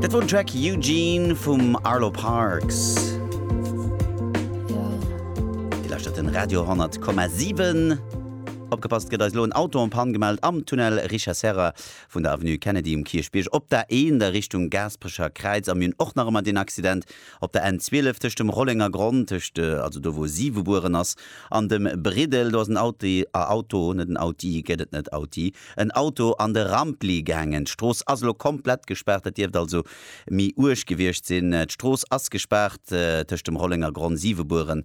Dat wor den Track Eugene vum Arlo Parks. Dir lauschtert den Radio 100,7. Opgepasst, et gëtt eis elo en Auto en Panne gemellt am Tunnel Richard Serra vun der Avenue Kennedy um Kierchbierg op der 1 a Richtung Gaasperecher Kräiz. A mir hunn och nach ëmmer deen Accident Op der N 12 tëscht dem Rollenger Gronn, tëscht, also do wou si gebueren ass, an dem Briddel, do ass en Auti, a Auto, net en Auti, gëtt et net, Auti, en Auto an de Rampli gaangen. D'Strooss ass elo komplett gespaart, dat dierft also méi uerg gewiescht sinn. D'Strooss ass gespaart tëscht dem Rollenger Gronn, Siwebueren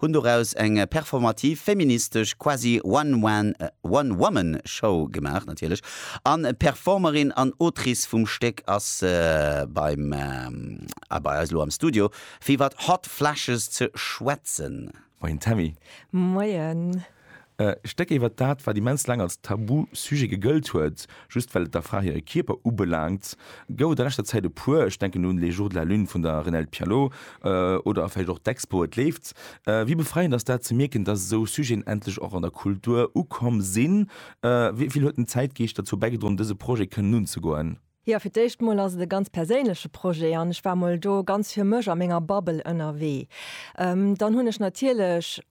hunn doraus eng performativ, feministesch, quasi One-Man, One-Woman-Show gemaach, natierlech, an d'Performerin an Autrice vum Stéck ass beim a bei eis elo am Studio fir iwwert Hot Flashes ze schwätzen. Moien Tammy. Moien. E Stéck iwwert dat, wat immens laang als Tabu-Sujet gegëllt huet, just well et der Fra hire Kierper ubelaangt, gouf et a leschter Zäit e puer. Ech denken un Les jours de la lune vun der Renelde Pialot oder vläicht och d'Expo Et leeft. Wéi befreiend ass dat ze mierken, dass esou Sujeten endlech och an der Kultur ukomm sinn? Wéi vill huet den Zäitgeescht derzou bäigedroen, dëse Projet kënnen unzegoen? Jo, fir d'éischt mol ass et e ganz perséinleche Projet an ech war mol do ganz fir mech a menger Bubble ënnerwee. Dann hunn ech natierlech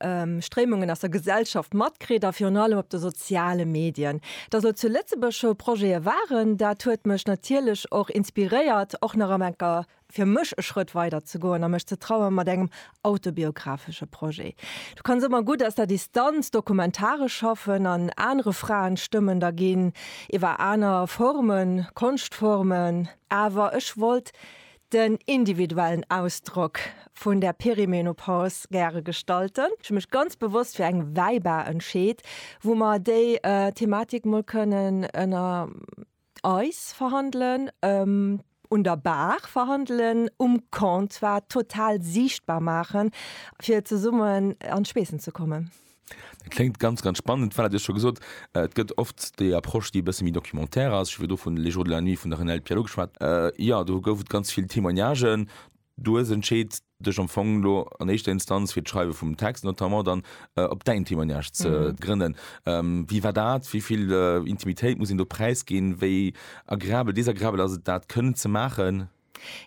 Stréimungen aus der Gesellschaft matkritt a virun allem op de soziale Medien. Datt elo zu Lëtzebuerg scho Projete waren, dat huet mech natierlech och inspiréiert, och nach am enker fir mech e Schrëtt weider ze goen a mech ze traue mat engem autobiographesche Projet. Du kanns ëmmer gutt aus der Distanz dokumentaresch schaffen an anere Fraenstëmmen da ginn, iwwer aner Formen, Konschtformen. Awer ech wollt den individuellen Ausdrock vun der Perimenopause gäre gestalten. Ech hu mech ganz bewosst fir eng Wäibar entscheet, wou mer déi Thematik mol kënnen ënner. Eis verhandelen un der Bar, verhandelen um Comptoir, total siichtbar maachen, fir zesummen an d'Schweessen ze kommen. Dat kléngt ganz, ganz spannend. Voilà, Dir hutt scho gesot, et gëtt oft déi Approche, déi e bësse méi documentaire ass. Ech hu virdru vun Les jours de la nuit vun der Renelde Pierlot geschwat. Jo, do gouf et ganz vill Témoignagen. Du hues entscheet, dech am Fong elo an éischter Instanz fir d'Schreiwe vum Text notamment dann op däin Témoignage ze grënnen. Wéi war dat? Wéi vill Intimitéit muss een do präisginn? Wéi agreabel, desagreabel ass et dat kënnen ze maachen?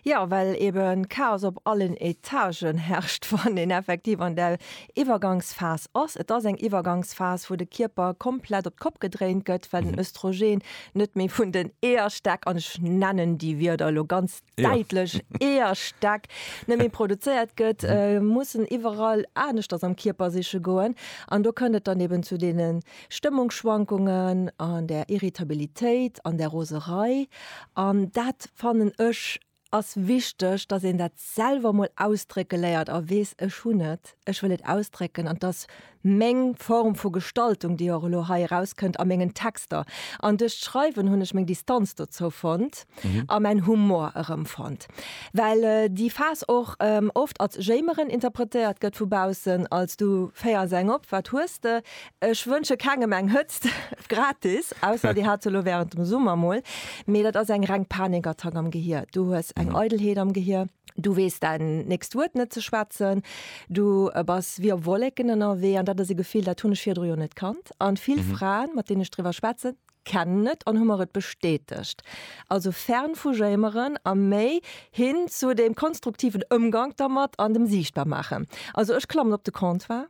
Jo, well ebe Chaos op allen Etagen herrscht, wann een effektiv an där Iwwergangsphas ass. Et ass eng Iwwergangsphas, wou de Kierper komplett op d'Kopp gedréint gëtt, well den Östrogen net méi vun den Eeërstäck, an ech nennen déi Wierder elo ganz däitlech eher stack net méi produzéiert gëtt, mhm. äh, mussen iwwerall anecht ass am Kierper siche goen. An do kënnet dann eben zu denen Stëmmungsschwankungen, an der Irritabilitéit, an der Roserei. An dat fannen ech ass wichteg, dass een dat selwer mol ausdrécke léiert a wees ech hun net, ech wëll et ausdrécken an dass meng Form vu Gestaltung, déi och elo hei erauskënnt a mengen Texter. An duerch d'Schreiwen hunn ech meng Distanz dozou fonnt a mäin Humor erëmfonnt. Well déi Phas och oft als Jéimeren interpretéiert gëtt vu baussen, als du féiers eng op, wat hues de? Ech wënsche kengem eng Hëtzt gratis, ausser dir hat se elo wärend dem Summer mol, mee dat ass eng reng Panikattack am Gehier. Du hues eng Eidelheet am Gehier. Du weess däin nächst Wuert net ze schwätzen, du bass wéi op Wolleken ënnerwee an dat ass e Gefill, dat hunn ech virdru jo net kannt. A vill Fraen, mat deenen ech driwwer schwätze kennen et an hu mer et bestätegt. Also fern vu Jéimeren a méi hin zu deem konstruktiven Ëmgank dermat an dem Siichtbarmaachen. Also ech klammen op de Comptoir,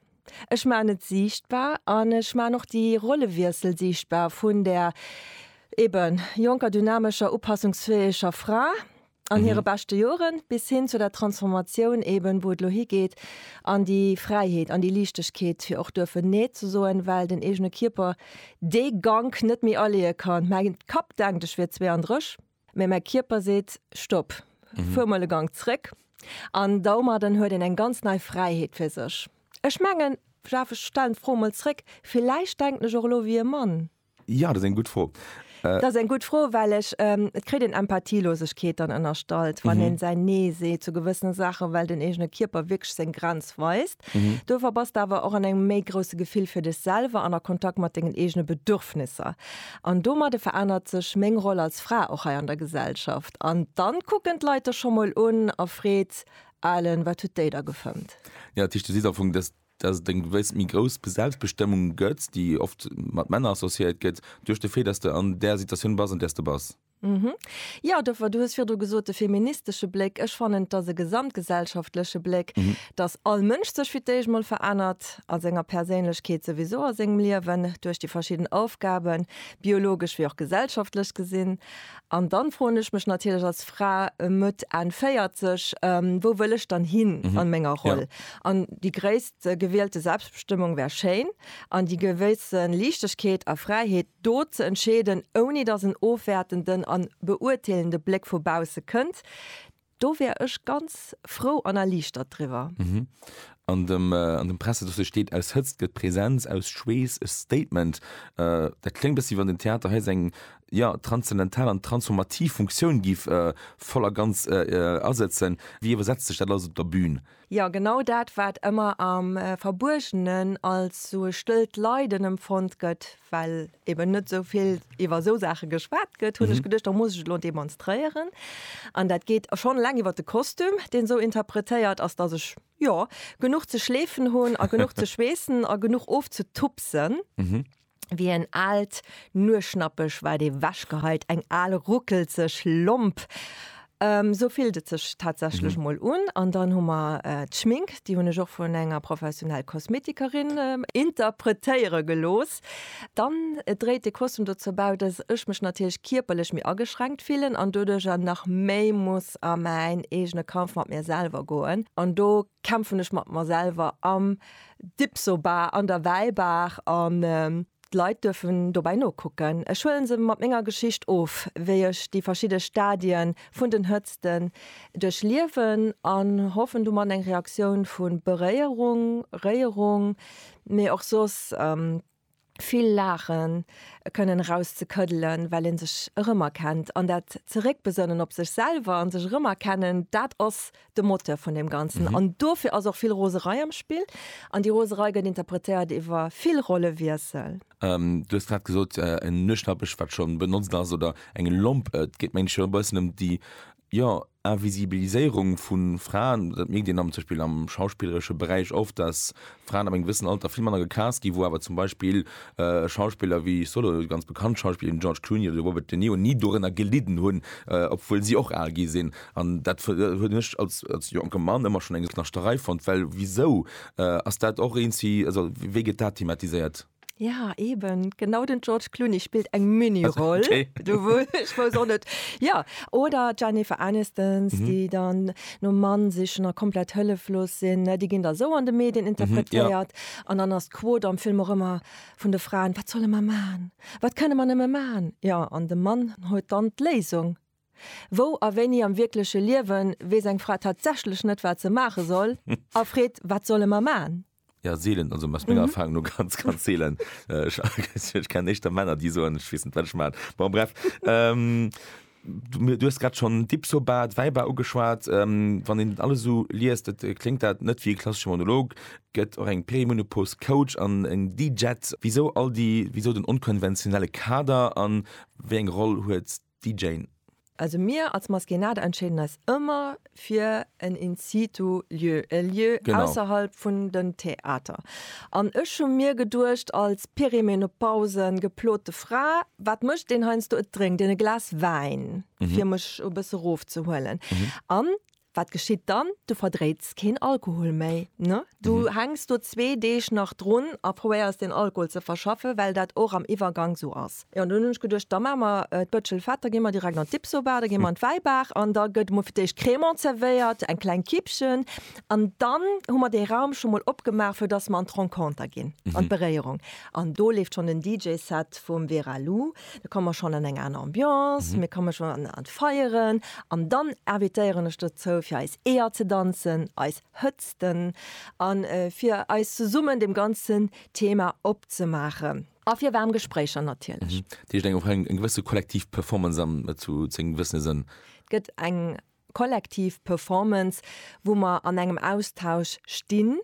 ech maachen et siichtbar an ech maachen och déi Rollewiessel siichtbar vun där eeben jonker, dynamescher, upassungsfäeger Fra, an hire beschte Joren, bis hin zu der Transformatioun eben, wou et elo higeet an déi Fräiheet, an déi Liichtegkeet, fir och duerfen Nee ze soen, well den eegene Kierper dee Gank net méi aleeë kann. Mäi Kapp denkt, ech wier 32, mä mäi Kierper seet, Stopp, fuer mol e Gank zréck. An domadden huet een eng ganz nei Fräiheet fir sech. Ech mengen, Jeff, ech stellen d'Fro mol zréck, villäicht denken ech och elo wéi e Mann. Jo, dat ass eng gutt Fro. Dat ass eng gutt Fro, well ech, et kritt een Empathielosegkeet dann ënnerstallt, wann een säin Nee seet zu gewëssene Saachen, well den eegene Kierper wierklech seng Grenz weist. Dofir bass de awer och an engem méi grousse Gefill fir dech selwer an a Kontakt mat dengen eegene Bedürfnisser. An domadde verännert sech meng Roll als Fra och hei an der Gesellschaft. An dann kucken d'Leit dech scho mol un erfreet, Alen, wat huet déi da gefëmmt? Jo, dat heescht, du sees am Fong, dass dass et eng gewëss méi grouss Selbstbestëmmung gëtt, déi oft mat Männer associéiert gëtt, duerch de Fait, dass de an där Situatioun bass, an där s de bass. Jo, dofir, du hues virdu gesot, de feministesche Bléck, ech fannen, et ass e gesamtgesellschaftleche Bléck, dass all Mënsch sech fir d'éischt mol verännert a senger Perséinlechkeet, souwisou a sengem Liewen, duerch déi verschidden Aufgaben, biologesch wéi och gesellschaftlech gesinn, An dann froen ech mech natierlech als Fra Mëtt, Enn 40, wou wëll ech dann hin an menger Roll? An déi gréisst gewielte Selbstbestëmmung wär schéin, an déi gewësse Liichtegkeet a Fräiheet, do ze entscheeden, ouni datt en ofwäertenden an beurteelende Bléck vu bausse kënnt, Do wär ech ganz frou an erliichtert driwwer. An dem Pressedossier steet, Aus Hëtzt gëtt Presenz, aus Schweess e Statement. Dat kléngt e bëssi, wéi wann den Theater hei seng, jo, transzendental an transformativ Funktioun géif voll a ganz asëtzen. Wéi iwwersetzt sech dat alles op der Bün? Jo, genau dat, wat ëmmer am Verbuergenen als sou e stëllt Leiden emfonnt gëtt, well eben net sou vill iwwer sou Saache geschwat gëtt, hunn ech geduecht, da muss ech et elo demonstréieren. An dat geet schonn eleng iwwer de Kostüm, deen sou interpretéiert ass, dass ech, jo, genuch ze schleefen hunn a genuch ze schweessen a genuch ofzetupsen. Wéi en aalt Nueschnappeg waart ee wechgeheit, eng al ruckelzeg Lomp. Sou fillt et sech tatsächlech mol un. An dann hu mer d'Schmink, déi hunn ech och vun enger professionell Kosmetikerin interpretéiere gelooss. Dann dréit de Kostüm dozou bäi, dass ech mech natierlech kierperlech méi ageschränkt fillen an doduercher nach méi muss a mäin eegene Kampf mat mir selwer goen. An do kämpfen ech mat mer selwer am Dipsobar an der Wäibaach an d'Leit duerfen dobäi nokucken. Ech huelen se mat menger Geschicht of, wéi ech déi verschidde Stadien vun den Hëtzten duerchliewen an hoffen domat eng Reaktioun vu Beréierung, Réierung, mee och soss vill Laache kënnen eraus ze këddelen, well ee sech erëmerkennt an dat Zeréckbesënnen op sech selwer a sech erëmerkennen, dat ass de Moteur vun deem Ganzen. An dofir ass och vill Roserei am Spill an déi Roserei gëtt interpretéiert iwwer vill Rollewiessel. Du hues grad gesot, en Nuechtnappech, wat scho benotzt ass, oder eng Lomp, et geet mengen ech jo e bëssen ëm déi Jo, Invisibiliséierung vu Fraen, dat mierkt een am zum Beispill am schauspilleresche Beräich oft, dass Fraen ab engem gewëssen Alter vill manner gecast ginn, wou awer zum Beispill Schauspiller wéi Solo, ganz bekannt Schauspiller wéi den George Clooney oder de Robert De Niro ni dorënner gelidden hunn, obwuel si och al gi sinn. An dat hunn ech als jonke Mann ëmmer schonn eng Naschtterei fonnt, well wisou ass dat och eent si, also wéi gëtt dat thematiséiert? Ja eben genau den George Clooney spillt eng Miniroll net Ja oder Jennifer Anistons, mhm. déi dann no Mann sichchen a komplett hëlleflos sinn. Déi ginn der sou an de Medien interpretéiert an mhm, ja. dann ass d'Quot am Film och ëmmer vun de Fraen wat solle mer man? Wat kënne man ëmme man? Ja an de Mann huet dann d'Léisung. Wou a wéini am wierkleche Liewen weess eng Fra tatsächlech net wat ze maache soll a freet wat solle mer man? Ja, seelen, also aus menger mhm. Erfahrung nur ganz, ganz seelen. Äh, ich, ich kenne echt Männer, die so, ich weiß nicht, was ich meine. Bon, bref. Ähm, du, du hast gerade schon Dipsobat, Weiber angeschaut. Ähm, wenn den alles so liest, das äh, klingt das nicht wie ein klassischer Monolog. Gibt auch ein Perimenopause Coach an ein DJ. Wieso all die, wieso den unkonventionellen Kader an wie eine Rolle hat déi Jane. Also mir als Maskénade entscheeden eis ëmmer fir en In-situ Lieu, e Lieu ausserhalb vun den Theater. An ech hu mir geduecht als perimenopause geplote Fra, wat mécht deen heiansdo, et drénkt een e Glas Wäin fir mech e bësse rofzehuelen. An Wat geschitt dann? Du verdréits keen Alkohol méi, ne? Du hänks do zwee Deeg nach drun a probéiers deen Alkohol ze verschaffen, well dat och am Iwwergank sou ass. Jo, an dunn hunn ech geduecht, da maache mer d'Bëtschel fett, da gi mer direkt an d'Dipsobar, da gi mer an d'Wäibaach an da gëtt emol fir d'éischt Crémant zerwéiert, eng kleng Kippchen an dann hu mer dee Raum scho mol opgemaach, fir dass mer an d'Renconter ginn, an d'Beréierung. An do leeft schonn den DJ-Set vum Vera Lou. Da komme mer schonn an eng aner Ambiance, mir komme schonn an an d'Feieren an dann invitéieren ech dozou fir eis Eeër ze danzen, eis Hëtzten an fir eis zesummen dem ganzen Thema opzemaachen. A fir waarm Gespréicher natierlech. Dat heescht eng och eng gewësse kollektiv Performance an zu zu engem gewëssene Sënn. Et gëtt eng kollektiv Performance, wou mer an engem Austausch stinn.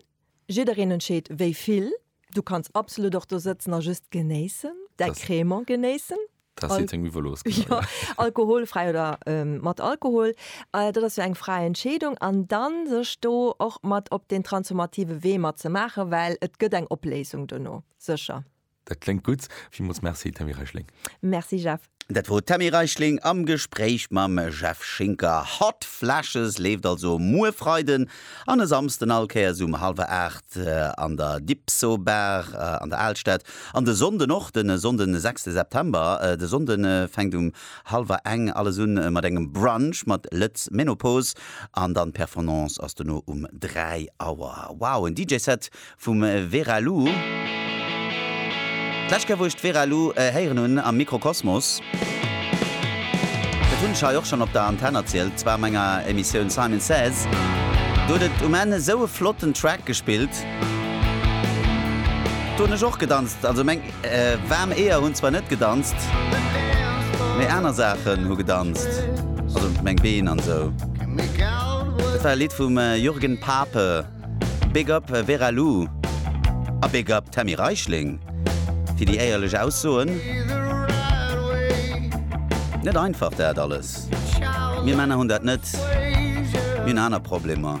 Jiddereen entscheet wéi vill. Du kanns absolut och do sëtzen a just genéissen, däi Das- Crémant genéissen. Dat Al- sinn seng Miwelos. Ja, alkoholfräi oder ähm, mat Alkohol. Äh, dat ass jo eng fräi Entscheedung. An dann sech do och mat op deen transformative Wee mat ze maachen, well et gëtt eng Opléisung dono, sécher. Dat kléngt gutt. Villmools Merci, Tammy Reichling. Merci, Jeff. Dat wor d'Tammy Reichling am Gespréich mam Jeff Schinker. Hot Flashes leeft also muer Freiden an e Samsden all Kéiers um hallwer 8 an der Dipso Bar an der Alstad. An de Sonnden och, de Sonnden 6 September. De Sonnde fänkt um hallwer eng alles un mat engem Brunch mat Lët'z Menopause an dann d'Perfornance ass dono um 3 Auer. Wow, en DJ-Set Vum Vera Lu. D'lescht Kéier wou ech d'Vera Lu héieren hunn am Mikrokosmos, dat hunn ech hei och schonn op der Antenn erzielt, zwar a menger Emissioun Simon Says, do huet et um Enn esou e flotten Track gespillt, do hunn ech och gedanzt, also meng waarm Eeër hunn zwar net gedanzt, mee aner Saachen hu gedanzt, also meng Been an esou. Dat war e Lidd vum Jürgen Pape. Big up Vera Lou a Big up Tammy Reichling fir déi éierlech Aussoen. Net einfach dat alles. Mir Männer hunn dat net, mir hunn aner Problemer.